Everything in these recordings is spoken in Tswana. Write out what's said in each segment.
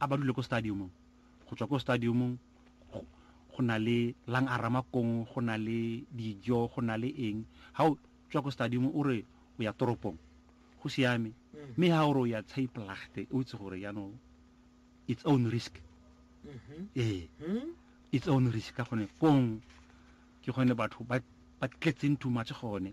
a ba dule ko stadiumong go tswa ko stadiumong go na le lang a ramakong go na le dijo go na le eng ga o tswa ko stadium o re o ya toropong go siame mm. mme ga o re o ya tshaipolagte o itse gore yaanong its own risk mm-hmm. ee mm. its own risk ka gone kong ke gone batho ba tletseng too much gone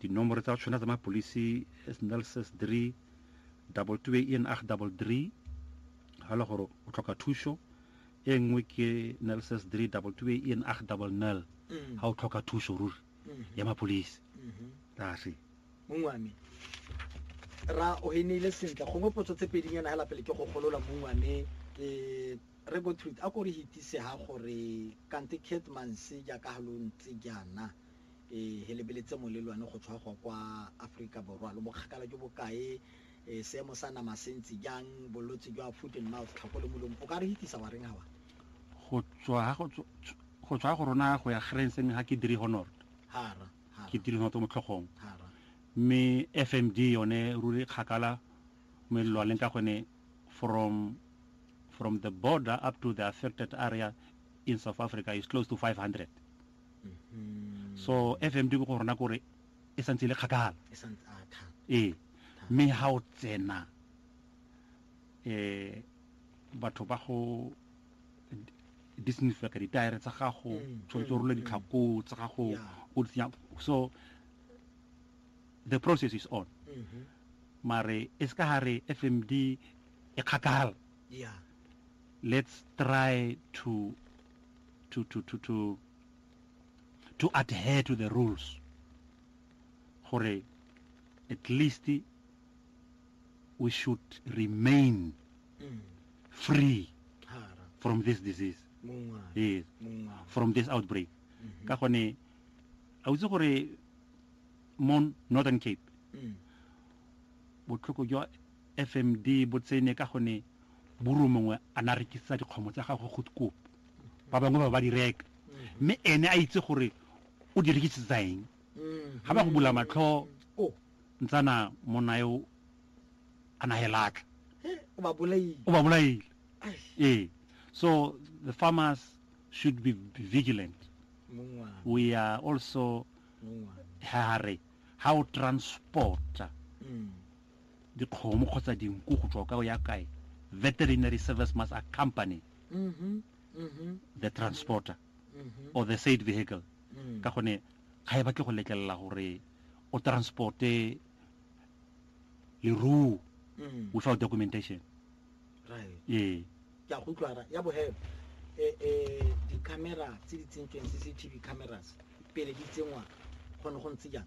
Dinomoro tsa tshwana tsa mapolisi is nelses 3 double two e en ag double three ga le gore o tlhoka thuso e nngwe ke nelses 3 double two e en ag double nel mm. ga o tlhoka thuso ruri mm-hmm. ya mapolisi mm-hmm. rase mongwe wa me ra o henile sentle gongwe potso tse pedinyana fela pele ke go golola mongwe wa me ke re go treat a ko re hitise ha gore kante catmanse jaaka ha lo ntse jaana e he lebeletse molelwane go tshwagwa kwa Aforika Borwa. Lo bokgakala jo bokae, e seemo sa nama se ntse jang, bolwetse jwa foot and mouth, tlhako le molomo, o ka re hitisa wa reng hawa? Go tswa ha go tswa go rona go ya Grense mme ga ke dire honor. Hara. Ke dire honor to motlhogong. Hara. Mme FMD yone ruri kgakala melelwaneng ka gone from from the border up to the affected area in South Africa is close to 500. mm-hmm. so fmd ko go rona kore e santse e le kgakala ee mme ga o tsena um batho ba go disinfecta ditire tsa gago mm, tshwanetse o mm, role mm. ditlhako tsa gago o di tsenya so the process is on mm-hmm. mare e se ka ga re fmd e kgakala let's try to to, to, to, to, to adhere to the rules gore at least we should remain mm. free from this disease yes. from this outbreak mm-hmm. ka gone a utse gore mo northern cape mm. botlhoko jwa fmd bo tsene ka gone Buru mongwe a na rekisetsa dikgomo tsa gagwe go dikopo, ba bangwe ba ba di reka, mme ene a itse gore o di rekisetsa eng. Ga ba go bula matlho, ntsana monna yo a na helatla, o ba bolaile. Ee, so the farmers should be vigilant. We are also hare ha o transporta dikgomo kgotsa dinku go tswa ka o ya kae veterinary service must accompany mm -hmm. Mm -hmm. the transporter mm -hmm. or the said vehicle mm. ka gone ga e batle go letlelela gore o transporte leruo mm. without documentation right. ee ke a go utlwara ya bohebe eh, eh, di-camera tse di tsentsweng cctv cameras pele di tsenngwa gone go ntse jang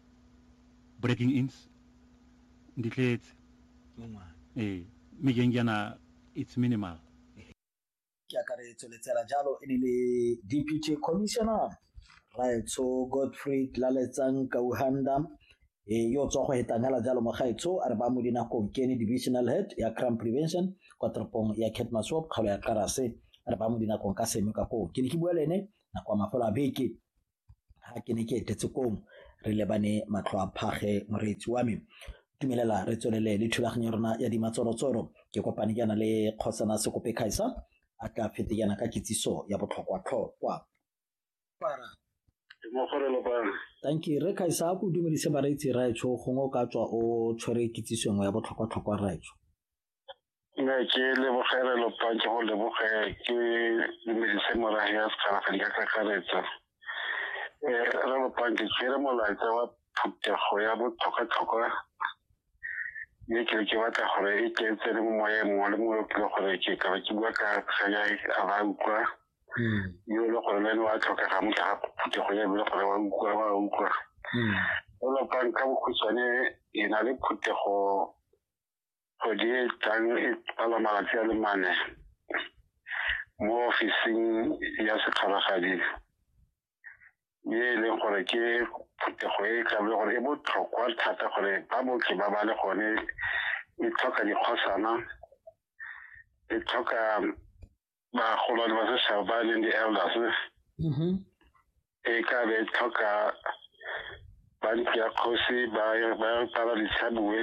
breaking ins di tletse ee mme jeng jaana it's minimal ke akaretso letsela jalo e ne le deputy commissioner raetsho godfrey laletsang kauhanda e yo tswa go hetangela jalo mogaetsho a re ba mo dinakong ke ene divisional head ya crime prevention kwa toropong ya catmasop kgalo ya karase a re ba mo dinakong ka seno ka koo ke ne ke bua le ene nako ya mafelo a beke ha ke ne ke etetse koo re lebane matlho a phage moreetsi wa me tumelela re tswelele le thulaganyo ya rona ya dimatsorotsoro ke kopane jaana le kgosana sekope kgaisa a tla fete jaana ka kitsiso ya botlhokwa-tlhokwa thank you re kgaisa a ko dumedise bareetsi raetsho gongwe o ka tswa o tshwere kitsisongwe ya botlhokwa-tlhokwa raetsho ne ke lebogele lopa ke go leboge ke dumedise morago ya sekarafeng ka kakaretsa um eh, re lopang ke tsere molaetsa wa phuthego ya botlhokwatlhokwa mme ke ke batla gore e ke tsene mo moyeng mongwe le mongwe kile gore ke ka ba ke bua ka kganya a ba utlwa hmm. yo le gore le ene wa tlhokega mo tlhaga phuthego ya bile gore wa utlwa wa utlwa hmm. o lopang ka bokhutshwane e na le phuthego kgwedi e tlang e pala malatsi a le mane mo ofising ya sekgalagadi ye e leng gore ke phutego e tlabe gore e botlhokwa thata gore ba botlhe ba ba le gone e tlhoka dikgosana e tlhoka bagolwane ba setšhaba ba leng di-elders mm-hmm. e ka be e tlhoka ba ntlo ya kgosi ba tala ditshabue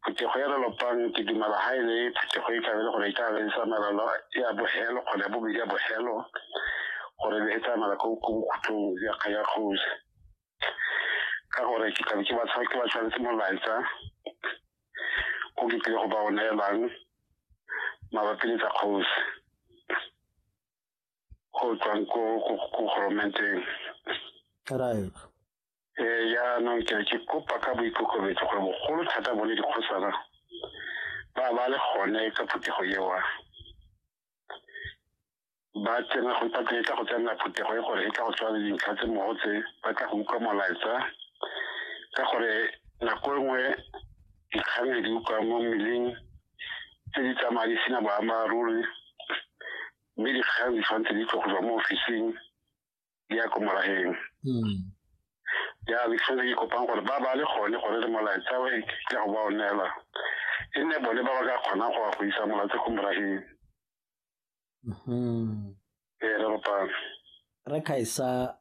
phetogo ya lelopang ke dumela ga e le phetogo e kabe le gore e ka be e tsamaelelo ya bogelo kgone ya bobedi ya bogelo gore e tsamaela ko bokhutlong ya kgosi ka gore ke tlabe ke ba tshwanetse molaetsa o ke tlile go ba o neelang mabapi le tsa kgosi go tswang ko goromenteng right ee jaanong ke ke kopa ka boikokobetso gore bogolo thata bone dikgosana ba ba le gone ka phuthego ewa ba tsena go ipatla e tla go tsenela phuthego e gore e tla go tshwana le dintlha tse mmogo tse ba tla go utlwa molaetsa ka gore nako e nngwe dikgang le di utlwa mo mmeleng tse di tsamaya di sena boammaaruri mme dikgang di tshwanetse di tlwa go tswa mo ofising di ya ko morageng hmm. ya le tshwanetse ke kopang gore ba ba le gone gore le molaetsa o tla go ba o neela e nne bone ba ba ka kgonang go wa go isa molaetsa ko morageng Mm-hmm. Ee, re kopane. Re khaisa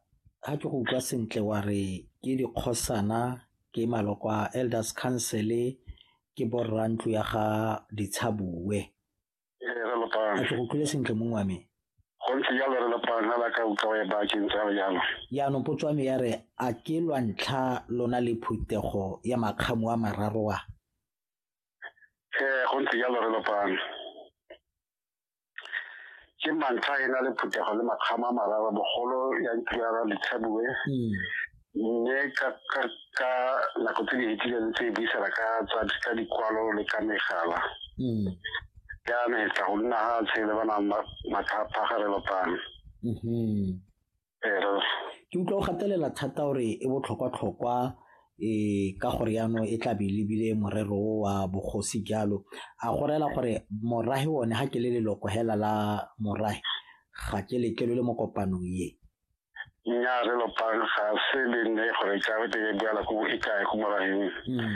ha ke go utlwa sentle wa re ke dikgosana ke maloko a elders council ke borra ntlo ya ga ditshabue Ee, re a lopane. ke go utlwile sentle mong wa me Go ntse jalo re lopane ga la ka utlwa e ba ke ntse a re jalo. jaanong potso ya me ya re a ke lwa ntlha lona le phuthego ya makgamo a mararo a ee go ntse jalo re lopang ke mantlha e na le phuthego le makgama a marara bogolo ya ntirara letshabue hmm. mme ka nako tse di fetileng tse e buisela ka tsa dikwalo le ka megala hmm. jaanong e tla go nna ga tshele ba na mathapha ga re lopang mm-hmm. ke utlwa o gatelela thata gore e botlhokwa-tlhokwa um ka gore yaanong e tlabe e lebile morero o wa bogosi jalo a go rela gore morahe one ga ke le leloko hela la morahe ga ke letlelo le mo kopanong ye nnyaa re lopang ga se le nne gore tlabe te e boela ko e kae ko moraheng mm.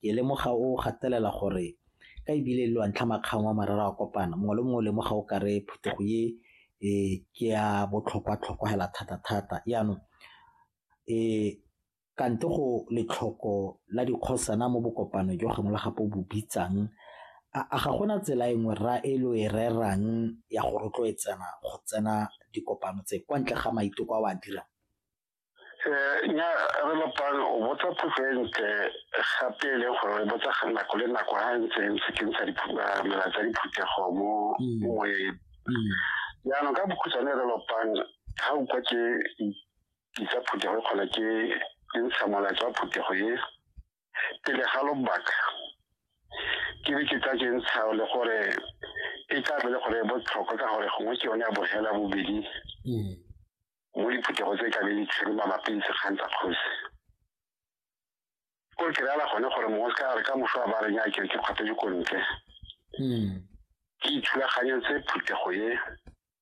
Ke lemoga o gatelela gore ka e bile le wa ntlha makgang wa marara wa kopana mongwe le mongwe o lemoga o kare phetogo ye um ke ya botlhokwa-tlhokwa hela thata-thata yaanong um kante go letlhoko la dikgosana mo bokopano jo gangwe le gape o bo bitsang a ga gona tsela e nngwe rra e lo e rerang ya go rotloetsana go tsena dikopano tse kwa ntle ga maiteko a o a dirang? Eh, nya re lopang o botsa potso e ntle gape e leng gore re botsa ga nako le nako ga ntse ntse ke ntsha ah, mela tsa diphuthego mo mm. moyeng mm. jaanong ka bokhutshwane re lopang ga o kwa ke itsa phuthego e kgona ke ke ntsha molaetsa wa phuthego e pele ga lobaka ke be ke tsa ke ntsha le gore e tla be le gore e botlhokwa ka gore gongwe ke yone ya bogela bobedi mm. mo diphuthego tse tlabe di tshwere mabapi le sekgang tsa kgosi ko ke reala gone gore mongwe se ka re ka moso a ba reng a kere ke kgwathe dikontle hmm. ke ithulaganyetse phuthego ye